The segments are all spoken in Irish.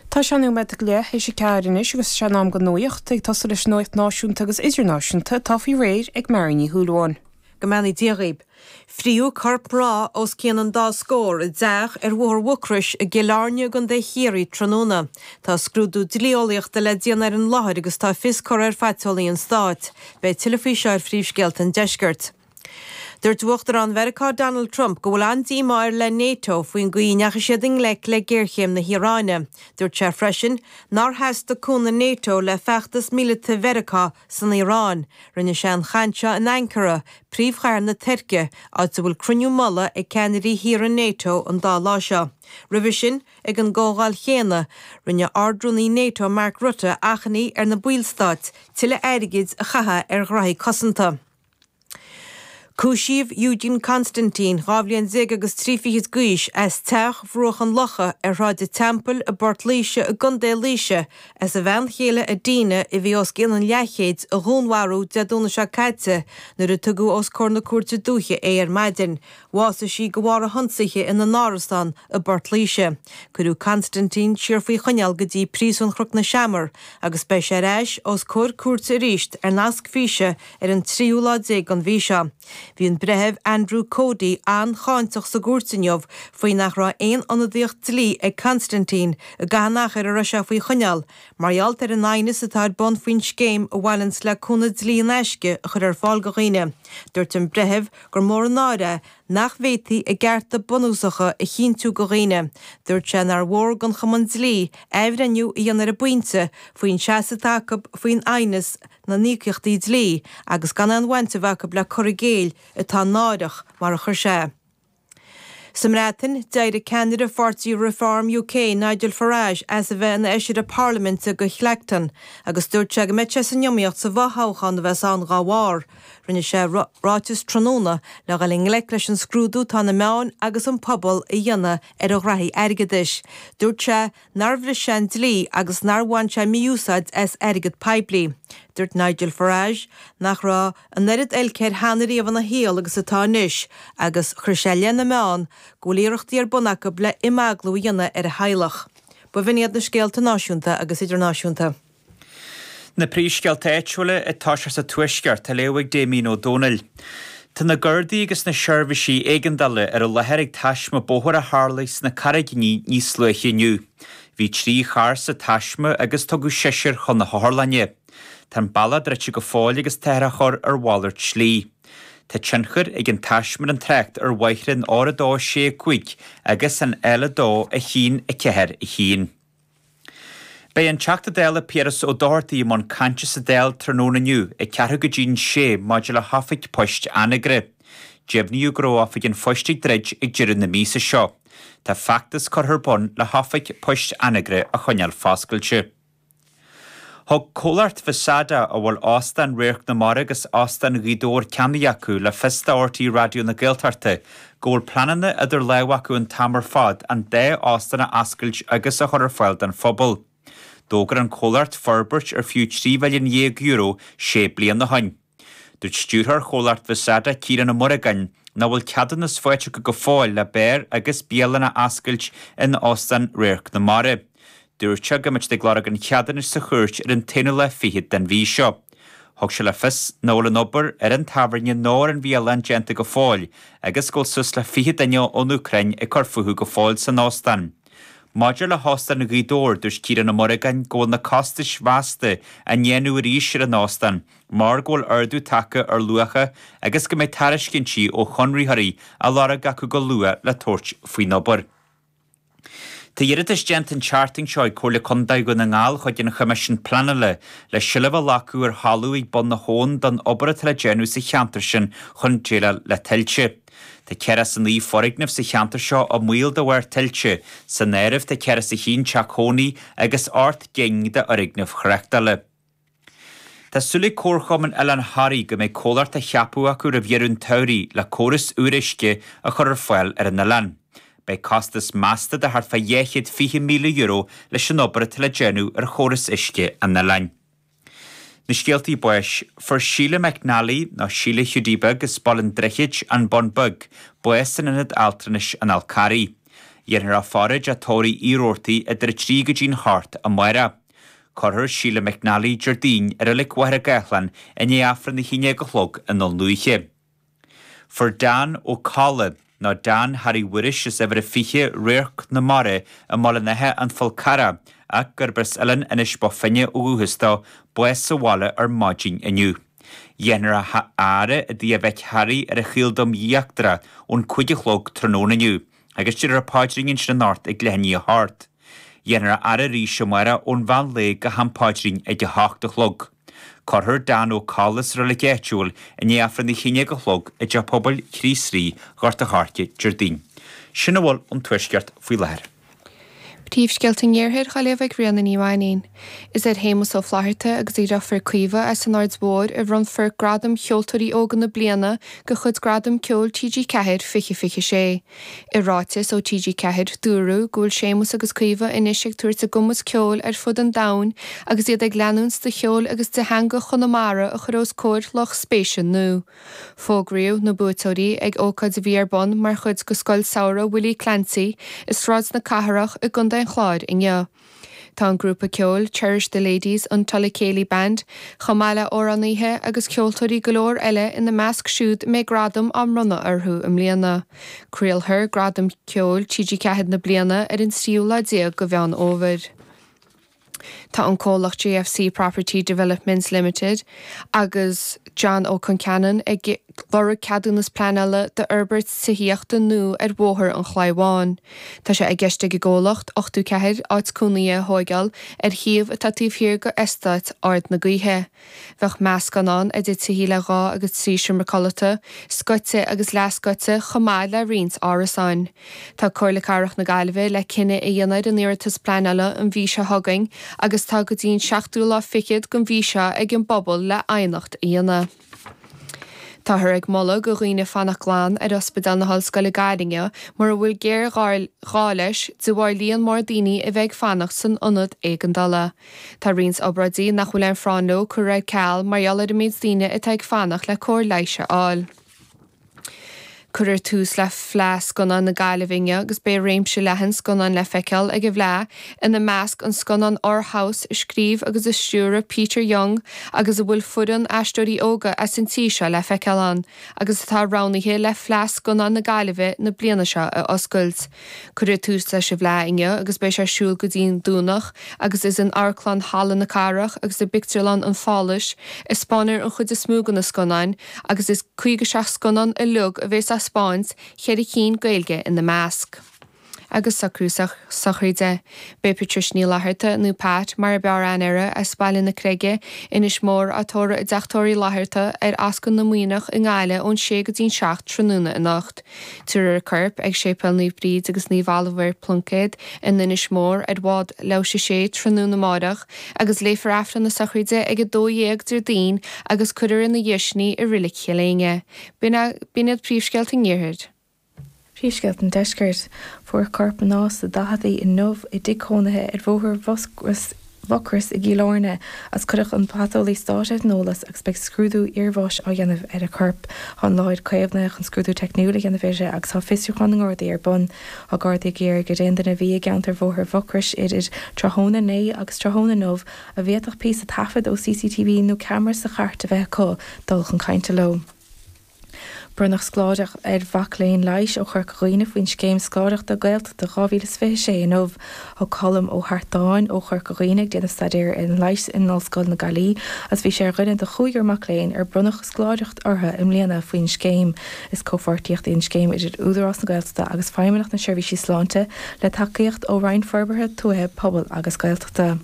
Tá sé anois nóiméad go leith tar éis a ceathair anois agus is é an am don nuaíocht ag tosú leis an nuaíocht náisiúnta agus idirnáisiúnta atá faoi réir ag Máire Ní Shúilleabháin. Go mbeannaí Dia dhaoib. Fritheadh corp mná os cionn an dá scór i dteach ar Bhóthar Mhucrois i gCill Airne i gContae Chiarraí tráthnóna. Tá scrúdú dlíeolaíochta le déanamh ar an láthair agus tá fios curtha ar phaiteolaí an Stáit. Beidh tuilleadh faoi seo ar Phríomhscéalta an Deiscirt. Dúirt Uachtarán Mheiriceá Donald Trump go bhfuil an-díomá air le Nato faoin gcaoi a ndeachaigh siad i ngleic le géarchéim na hIaráine. Dúirt sé freisin nár theastaigh cúnamh Nato le feachtas míleata Mheiriceá san Iaráin. Rinne sé an chaint seo in Ankara, príomhchathair na Tuirce, áit a bhfuil cruinniú mullaigh ag ceannairí thíortha Nato an dá lá seo. Roimhe sin, ag an gcomhdháil chéanna, rinne Ard-Rúnaí Nato Mark Rutte achainí ar na ballstáit tuilleadh airgid a chaitheamh ar ghraithí cosanta. Cúisíodh Eugen Constantin, dhá bhliain déag agus trí fichid d'aois, as Teach Bhruach an Locha ar Shráid an Teampaill i bPort Laoise i gContae Laoise as a bhean chéile Adina, a bhí os cionn an leathchéid, a dhúnmharú Dé Domhnaigh seo caite nuair a tugadh os comhair na Cúirte Dúiche é ar maidin. Bhásaigh sí de bharr a hionsaithe ina n-árasán i bPort Laoise. Cuireadh Constantin siar faoi choinneáil go dtí Príosún Chnoc na Seamar agus beidh sé ar ais os comhair cúirte arís ar nasc físe ar an tríú lá déag den mhí seo. Bhí an Breitheamh Andrew Cody an-cháinteach sa gcúirt inniu faoi nach raibh aon ionadaíocht dlí ag Constantin i gcaitheamh an achair a raibh sé faoi choinneáil mar gheall ar an aighneas atá ar bun faoin scéim a bhaineanns le cúnamh dlí in aisce a chur ar fáil do dhaoine. Dúirt an Breitheamh gur mór an náir é nach bhféadfaí a gcearta bunúsacha a chinntiú go dhaoine. Dúirt sé nár mhór don Chumann Dlí athbhreithniú a dhéanamh ar an bpointe faoin seasamh atá acu faoin aighneas na n-íocaíochtaí dlí agus gan aon bhaint a bheith acu le cur i gcéill atá náireach, mar a chuir sé é. Sa mBreatain, d'éirigh ceannaire pháirtí Reform UK, Nigel Farage, as a bheith ina fheisire parlaiminte do Clacton agus dúirt sé go mbeidh sé san iomaíocht sa bhfothoghchán a bheas ann dá bharr. Rinne sé ráiteas tráthnóna le dhul i ngleic leis an scrúdú atá na meáin agus an pobal a dhéanamh ar a ghraithí airgeadais. Dúirt sé. nár bhris sé an dlí agus nár bhain sé mí-úsáid as airgead poiblí. Dúirt Nigel Farage nach raibh an oiread oilc air cheana riamh ina shaol is atá anois agus chuir sé i leith na meán go bhfuil iarrachtaí ar bun acu le himeaglú a dhéanamh ar a theaghlach. B'in iad na scéalta náisiúnta agus idirnáisiúnta. Na príomhscéalta áitiúla ag tosú sa Tuaisceart á léamh ag Damien Ó Dónaill. Tá na Gardaí agus na seirbhísí éigeandála ar an láthair ag taisme bóthair a tharlaigh sna Carraigíní níos luaithe inniu. Bhí trí charr sa taisme agus tugadh seisear chun na hotharlainne. Tá an bealach druidte go fóill agus táthar á chur ar mhalairt slí. Tá tionchar ag an taisme ar an trácht ar bhóithre an R2 6 5 agus an L2 1 4 1. Beidh an Teachta Dála Piaras Ó Dochartaí i mbun cainte sa Dáil tráthnóna inniu ag ceathrú go dtí'n sé maidir le hOifig Poist Anagaire. Deimhníodh go raibh Oifig an Phoist ag druid ag deireadh na míosa seo. Tá feachtas curtha ar bun le hOifig Poist Anagaire a choinneáil foscailte. Thug comhlacht Vesada, a bhfuil Óstán Radharc na Mara agus Óstán Ghaoth Dobhair ceannaithe acu, le fios do RTÉ Raidió na Gaeltachta go bhfuil pleananna idir lámha acu an t-am ar fad an dá óstán a oscailt agus a chur ar fáil don phobal. D'fhógair an comhlacht forbairt ar fiú trí mhilliún dhéag euro sé bliana ó shin. Dúirt stiúrthóir chomhlacht Vesada, Ciarán Ó Muireagáin, nach bhfuil ceadúnas faighte acu go fóill le beár agus bialann a oscailt in Óstán Radharc na Mara. Dúirt sé go mbeidh siad ag lorg an cheadúnais sa chúirt ar an t-aonú lá fichead den mhí seo. Thug sé le fios nach bhfuil an obair ar an tábhairne ná ar an bhialann déanta go fóill agus go bhfuil suas le fiche duine ón Úcráin ag cur fúthu go fóill san óstán. Maidir le hÓstán Ghaoth Dobhair, dúirt Ciarán Ó Muireagáin go bhfuil na costais mheasta á ndéanamh arís ar an óstán mar go bhfuil ardú tagtha ar luacha agus go mbeidh tairiscintí ó chonraitheoirí á lorg acu go luath le tabhairt faoin obair. Tá iarratas déanta an tseachtain seo ag Comhairle Contae Dhún na nGall chuig an Choimisiún Pleanála le seilbh a ghlacadh ar thalamh ag Bun na hAbhann don obair atá le déanamh sa cheantar sin chun déileáil le tuilte. Tá ceathracha is a naoi foirgneamh sa cheantar seo i mbaol de bharr tuilte, san áireamh tá ceathracha is a haon teach cónaí agus ocht gcinn d'fhoirgnimh thráchtála. Tá súil ag Comharchumann Oileán Thoraí go mbeidh comhlacht á cheapadh acu roimh dheireadh an tsamhraidh le córas úr uisce a chur ar fáil ar an oileán. Beidh costas measta de thart fá dhá chéad fiche míle euro leis an obair atá le déanamh ar chóras uisce an oileáin. Na scéaltaí báis. Fuair Síle McNally, nó Síle Hiúdaí Beag as Baile an Droichid, An Bun Beag, bás in Ionad Altranais an Fhál Carraigh. Dhéanfar a faire i dteach tórraimh Uí Rabhartaigh idir a trí go dtí'n hocht amáireach. Cuirfear Síle McNally Déardaoin i reilig Mhachaire Gathlán i ndiaidh Aifreann a haon déag a chlog i nDún Lúiche. Fuair Dan Ó Colla, nó Dan Harry Mhuiris as uimhir a 20 Radharc na Mara i mBaile an Átha, an Fhál Carrach ach gurb as Oileán Inis Bó Finne ó dhúchas dó, bás sa bhaile ar maidin inniu. Dhéanfar a fhaire i dtigh a mhic Harry ar an Chaoldroim Íochtarach ón cúig a chlog tráthnóna inniu Agus déarfar an paidrín ansin anocht ag leath i ndiaidh a h-ocht, dhéanfar a fhaire arís amáireach ón mheán lae go ham paidrín ag a h-ocht a chlog. Cuirfear Dan Ó Colla sa reilig áitiúil i ndiaidh aifreann a haon déag a chlog i dteach pobail Chríost Rí Ghort a Choirce Déardaoin. Sin a bhfuil ón Tuaisceart faoi láthair. Príomhscéalta an Iarthair dhá léamh ag Ríona Ní Mhainín. Is ar Shéamus Ó Flatharta agus a dheirfiúr Caoimhe as an Aird Mhóir a bhronnfar Gradam Cheoltóirí Óga na Bliana de chuid Gradam Ceoil TG4 2026. I ráiteas ó TG4, dúradh go bhfuil Séamus agus Caoimhe anois ag tabhairt a gcumas ceoil ar fud an domhain agus iad ag leanúint de cheol agus de theanga Chonamara a chur os comhair lucht spéise nua Fógraíodh na buaiteoirí ag ócáid a bhí ar bun mar chuid de Scoil Samhraidh Willie Clancy i Sráid na Cathrach i gContae an Chláir inniu. Tá an grúpa ceoil Cherish the Ladies, an Tulla Céilí Band, chomh maith le amhránaithe agus ceoltóirí go leor eile ina measc siúd a mbeidh gradam á mbronnadh orthu i mbliana. Craolfar Gradam Ceoil TG4 na bliana ar an tríú lá déag de Mheán Fhómhair. Tá an comhlacht JFC Property Developments Limited agus John Ó Concheanainn ag lorg ceadúnas pleanála d'fhorbairt tithíochta nua ar Bhóthar an Chlaí Bháin. Tá sé i gceist ag an gcomhlacht 84 áit cónaithe a thóigeáil ar shuíomh atá taobh thiar d'Eastát Ard na Gaoithe. Bheadh meascán ann idir tithí le dhá agus trí seomra codlata, scoite agus leathscoite, chomh maith le roinnt árasáin. Tá Comhairle Cathrach na Gaillimhe le cinneadh a dhéanamh ar an iarratas pleanála an mhí seo chugainn agus tá go dtí an seachtú lá fichead den mhí seo ag an bpobal le aighneacht a dhéanamh. Táthar ag moladh do dhaoine fanacht glan ar Ospidéal na hOllscoile Gaillimh mura bhfuil géarghá leis de bharr líon mór daoine a bheith ag fanacht san ionad éigeandála. Tá roinnt obráidí nach bhfuil aon phráinn leo curtha ar ceal mar gheall ar an méid daoine atá ag fanacht le cóir leighis a fháil. Cuireadh tús le Fleadh Scannán na Gaillimhe inniu agus beidh réimse leathan scannán le feiceáil ag an bhFleadh, ina measc an scannán Our House a scríobh agus a stiúraigh Peter Young agus a bhfuil foireann aisteoirí óga as an tír seo le feiceáil ann agus atá roghnaithe le Fleadh Scannán na Gaillimhe na bliana seo a oscailt. Cuireadh tús leis an bhFleadh inniu agus beidh sé ar siúl go dtí an Domhnach agus is in Amharclann Halla na Cathrach agus i bPictiúrlann an Pháláis a spáinfear an chuid is mó de na scannáin agus is 57 scannán uiliog a bheas á spáint, cheithre cinn Gaeilge ina measc. Agus socrú sochraide, beidh Patricia Ní Fhlatharta, nó Pat mar ab fhearr aithne uirthi, as Baile na Creige, Inis Mór, á tórramh i dteach tórraimh Uí Fhlatharta ar Ascaill na Muimhneach i nGaillimh ón 6 go dtí an 7 tráthnóna anocht. Tabharfar a corp ag Séipéal Naomh Bríd agus Naomh Olibhéar Pluincéad in Inis Mór ar bhád leathuair théis 6 tráthnóna amáireach agus léifear Aifreann na sochraide ag 12:00 Déardaoin agus cuirfear ina dhéidh sin í i Reilig Chill Éinne. B'in iad príomhscéalta an Iarthair. Príomhscéalta an Deiscirt. Fuair corp mná sna daicheadaí inniu i dtigh cónaithe ar Bhóthar Mhuscraí. Mhucrois i gCill Áirne as cuireadh an Paiteolaí Stáit ar an eolas agus beidh scrúdú iarbháis á dhéanamh ar a corp. Tá an láthair caomhnaithe chun scrúdú teicniúil a dhéanamh uirthi agus tá fiosrúchán na nGardaí ar bun. Tá Gardaí ag iarraidh ar aon duine a bhí i gceantar Bhóthar Mhucrois idir tráthnóna inné agus tráthnóna inniu a bhféadfadh píosa taifead ó CCTV nó ceamara sa chairt a bheith acu dul chun cainte leo. Bronnadh scoláireacht ar mhac léinn leighis ó Chorca Dhuibhne faoin Scéim Scoláireachta Gaeltachta 2026 inniu. Tá Colm Ó hEartáin ó Chorca Dhuibhne, ag déanamh staidéar ar an leigheas in Ollscoil na Gaillimhe, agus bhí sé ar dhuine de chúigear mac léinn ar bronnadh scoláireacht orthu i mbliana faoin scéim. Is comhpháirtíocht í an scéim idir Údarás na Gaeltachta agus Feidhmeannacht na Seirbhísí Sláinte, le tacaíocht ó Roinn Forbartha Tuaithe, Pobail agus Gaeltachta.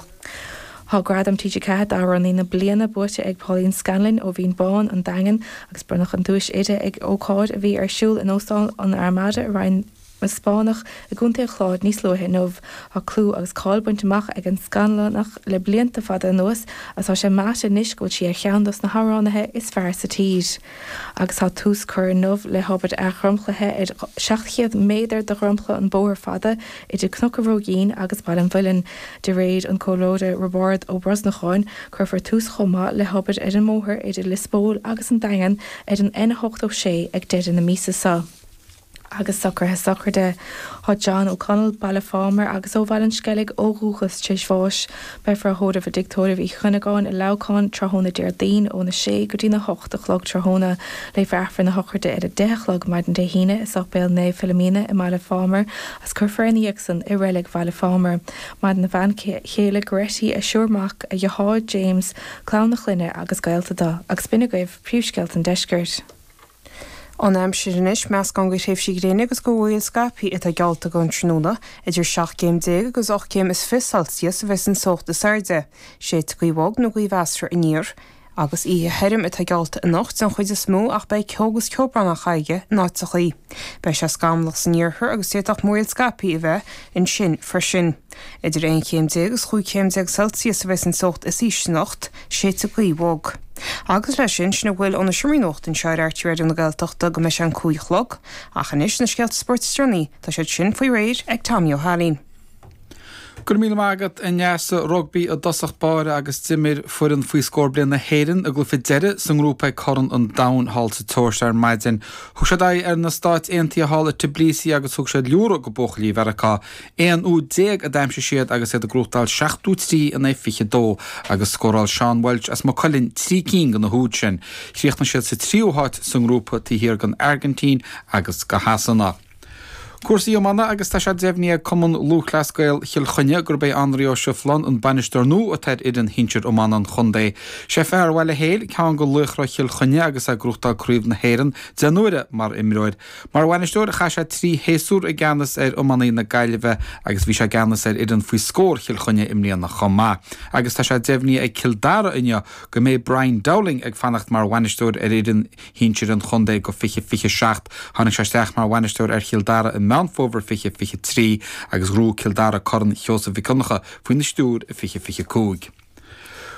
Tá Gradam TG4 d'Amhránaí na Bliana buaite ag Pauline Scanlon ó Bhinn Bhán, an Daingean, agus bronnadh an duais uirthi ag ócáid a bhí ar siúl in Óstán an Armada i Rinn na Spáinneach i gContae an Chláir níos luaithe inniu. Tá clú agus cáil bainte amach ag an Scanlonach le blianta fada anuas agus tá sé meáite anois go bhfuil sí ar cheann dos na hamhránaithe is fearr sa tír. agus tá tús curtha inniu le hobair athdhromchlaithe ar 700 méadar de dhromchla an Bhóthair Fhada idir Cnoc a' Róigín agus Baile an Mhuilinn. De réir an comhairleoir Roibeárd Ó Brosnacháin, cuirfear tús chomh maith le hobair ar an mbóthar idir Lios Póil agus an Daingean ar an N86 ag deireadh na míosa seo. Agus socruithe sochraide tá John O'Connell, Baile Phámar agus ó Bhaile an Sceilg ó dhúchas tar éis bháis, beifear á thórramh i dTigh Tórraimh Uí Chuinneagáin i Leamhcán tráthnóna Déardaoin óna sé go dtí na hocht a chlog tráthnóna. Léifear Aifreann na sochraide ar a deich a chlog maidin Dé hAoine i Séipéal Naomh Philomena i mBaile Phámar agus cuirfear ina dhiaidh san i Reilig Bhaile Phámar. Maireann a bhean chéile Goretti, a thriúr mac, a dheartháir James, clann a clainne agus gaolta eile. Agus b'in agaibh príomhscéalta an deiscirt. An aimsir anois, meascán de thréimhsí gréine agus de mhúraíl scaipthe atá geallta don tráthnóna. Idir seacht gcéim déag agus ocht gcéim is fiche Celsius a bheidhs an teocht is airde. Séidfidh gaoth bhog nó gaoth mheasartha aniar. agus oíche thirim atá geallta anocht den chuid is mó ach beidh ceo agus ceobhrán farraige in áiteacha. Beidh sé scamallach san iarthar agus d'fhéadfadh múraíl scaipthe a bheith ansin freisin. Idir aon chéim déag is chúig chéim déag Celsius a bheidhs an teocht is ísle anocht. séidfidh gaoth bhog. Agus leis sin, sin a bhfuil ó na seomraí nuachta anseo ar RTÉ Raidió na Gaeltachta go mbeidh sé an cúig a chlog, ach anois na scéalta spóirt is déanaí, tá siad sin faoi réir ag Tommy Ó hAilín. Go raibh míle maith agat a Neasa. Rugbaí i dtosach báire agus d'imir foireann faoi scór bliain na hÉireann a gcluiche deiridh sa ngrúpa ag Corn an Domhain thall sa tSeoirsia ar maidin. Thug siad aghaidh ar na Stáit Aontaithe thall i Tbilisi agus thug siad liúradh do bhuachaillí Mheiriceá 11 úd a d'aimsigh siad agus iad ag gnóthachtáil 73 in aghaidh 22 agus scóráil Seán Walsh as Maigh Cuilinn trí cinn de na húid sin. Chríochnaigh siad sa tríú háit sa ngrúpa taobh thiar den Airgintín agus de Shasana. Cúrsaí iomána agus tá sé deimhnithe ag Cumann Lúthchleas Gael Chill Chainnigh gurb é Anraí Ó Sibhleáin an bainisteoir nua atá ar fhoireann shinsir iomána an chontae. Sé fear Bhaile Héil ceann de laochra Chill Chainnigh agus é ag gnóthachtáil craobh na hÉireann deich n-uaire mar imreoir Mar bhainisteoir chaith sé trí shéasúr i gceannas ar iománaithe na Gaillimhe agus bhí sé i gceannas ar fhoireann faoi scór Chill Chainnigh i mbliana chomh maith agus tá sé deimhnithe ag Cill Dara inniu go mbeidh Brian Dowling ag fanacht mar bhainisteoir ar fhoireann shinsir an chontae go 2027. Tháinig sé isteach mar bhainisteoir ar Chill Dara i Meán Fómhair 2023 agus ghnóthaigh Cill Dara Corn Sheosaimh Mhic Dhonncha faoina stiúir i 2025.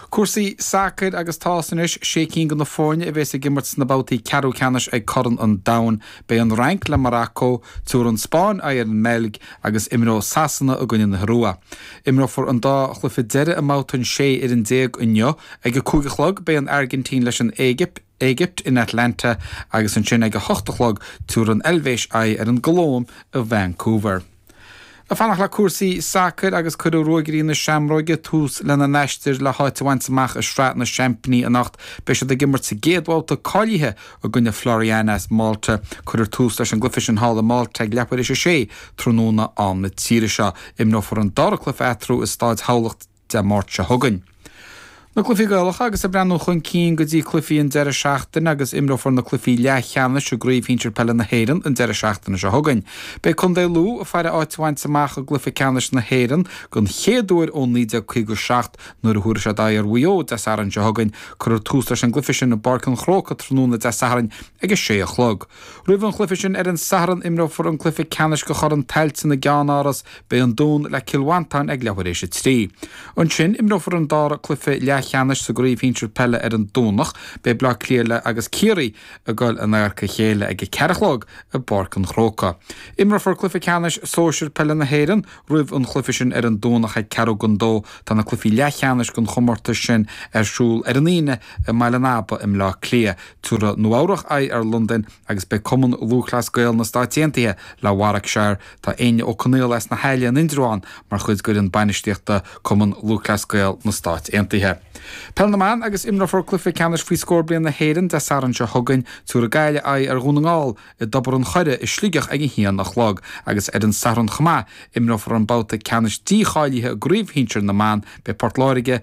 Cúrsaí sacair agus tá a fhios anois sé cinn de na foirne a bheas ag imirt sna babhtaí ceathrú ceannais ag Corn an Domhain. Beidh an Fhrainc le Morocco, tabharfaidh an Spáinn aghaidh ar an mBeilg agus imreoidh Sasana i gcoinne na hIorua. Imreofar an dá chluiche deireadh i mbabhta an 16 fhoireann inniu. Ag a cúig a chlog beidh an Airgintín leis an Éigipt. Éigipt in Atlanta agus ansin ag a hocht a chlog tabharfaidh an Eilvéis aghaidh ar an gColóim i Vancouver. Ag fanacht le cúrsaí sacair agus cuirfidh Ruagairí na Seamróige tús lena n-aistir le háit a bhaint amach i Sraith na Seaimpíní anocht. Beidh siad ag imirt sa gcéad bhabhta cáilithe i gcoinne Floriana as Malta. Cuirfear tús leis an gcluife sin thall i Malta ag leathuair éis a sé tráthnóna am na tíre seo. Imreofar an dara cluife eatarthu i Staid Thamhlachta Dé Dé Máirt seo chugainn. Na cluichí Gaelacha agus ag breathnú chun cinn go dtí cluichí an deireadh seachtaine agus imreofar na cluichí leathcheannais i gCraobh Shinsir Peile na hÉireann an deireadh seachtaine seo chugainn. Beidh Contae Lú ag faire áit a bhaint amach i gcluiche ceannais na hÉireann den chéad uair ó 1957 nuair a thabharfaidh siad aghaidh ar Mhaigh Eo Dé Sathairn seo chugainn. Cuirfear tús leis an gcluiche sin i bPáirc an Chrócaigh tráthnóna Dé Sathairn ag a sé a chlog. Roimh an chluiche sin ar an Satharn imreofar an cluiche ceannais de Chorn Tailteann i gceannáras Beidh an Dún le Cill Mhantáin ag leathuair éis a trí. Ansin, imreofar an dara cluiche leathcheannais sa gcraobh shinsir peile ar an Domhnach. Beidh Bleá Cliath agus Ciarraí ag goil in adharca a chéile ag a ceathair a chlog i bPáirc an Chróca. Imreofar cluiche ceannais sóisir peile na hÉireann roimh an chluiche sin ar an Domhnach ag ceathrú don dó. Tá na cluichí leathcheannais den chomórtas sin ar siúl ar an Aoine i mBaile an Aba i mBleá Cliath. Tabharfaidh Nua Eabhrach aghaidh ar Londain agus beidh Cumann Lúthchleas Gael na Stáit Aontaithe le Warwickshire. Tá Áine Ó Conaill as na hAille in Indreabhán mar chuid d'fhoireann bainistíochta Cumann Lúthchleas Gael na Stát Aontaithe. Peil na mBan agus imreofar cluiche ceannais faoi scór bliain na hÉireann Dé Sathairn seo chugainn. Tabharfaidh Gaillimh aghaidh ar Dhún na nGall i dTobar an Choire i Sligeach ag a haon a chlog agus ar an Satharn chomh maith imreofar an babhta ceannais dícháilithe i gcraobh shinsir na mban. Beidh Port Láirge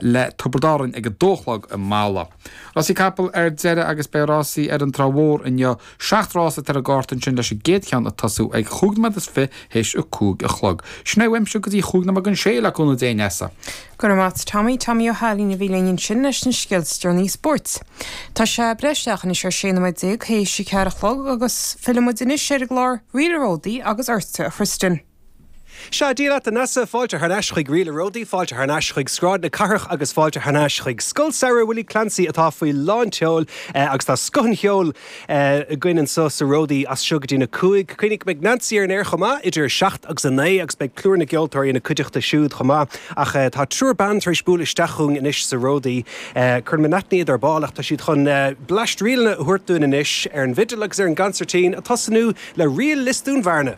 le Tiobraid Árann ag a dó a chlog i Mala. Rásaí capall ar deireadh agus beidh rásaí ar an Trá Mhór inniu. Seacht rás atá ar an gcárta ansin leis an gcéad cheann ag tosú ag chúig nóiméad is fiche th'éis a cúig a chlog. Sin é uaimse go dtí chúig nóiméad chun a sé le cúnamh Dé a Neasa. Go raibh maith agat Tommy, Tommy Ó hAilín a bhí linn ansin leis na scéalta is deireanaí spóirt. Tá sé ag breith isteach anois ar sé nóiméad déag th'éis a ceathair a chlog agus fillfimid anois ar an gclár Ríl a' Ródaí agus ortsa a Thristan. Sea, Dia leat a Neasa, fáilte thar n-ais chuig Ríl a' Ródaí, fáilte thar n-ais chuig Sráid na Cathrach agus fáilte thar n-ais chuig Scoil Samhraidh Willie Clancy atá faoi lán tseoil agus tá scoth an cheoil againn anseo sa Ródaí as seo go dtí na cúig. Cuimhnigh, beidh Nancy ar an aer chomh maith idir a seacht agus a naoi agus beidh plúr na gceoltóirí ina cuideachta siúd chomh maith ach tá triúr ban tar éis bualadh isteach chugainn anois sa Ródaí. Cuirfead in aithne iad ar ball ach tá siad chun bleaist ríleanna a thabhairt dúinn anois ar an bhfidil agus ar an gcansairtín, ag tosnú le ríl Lios Dún Bhearna!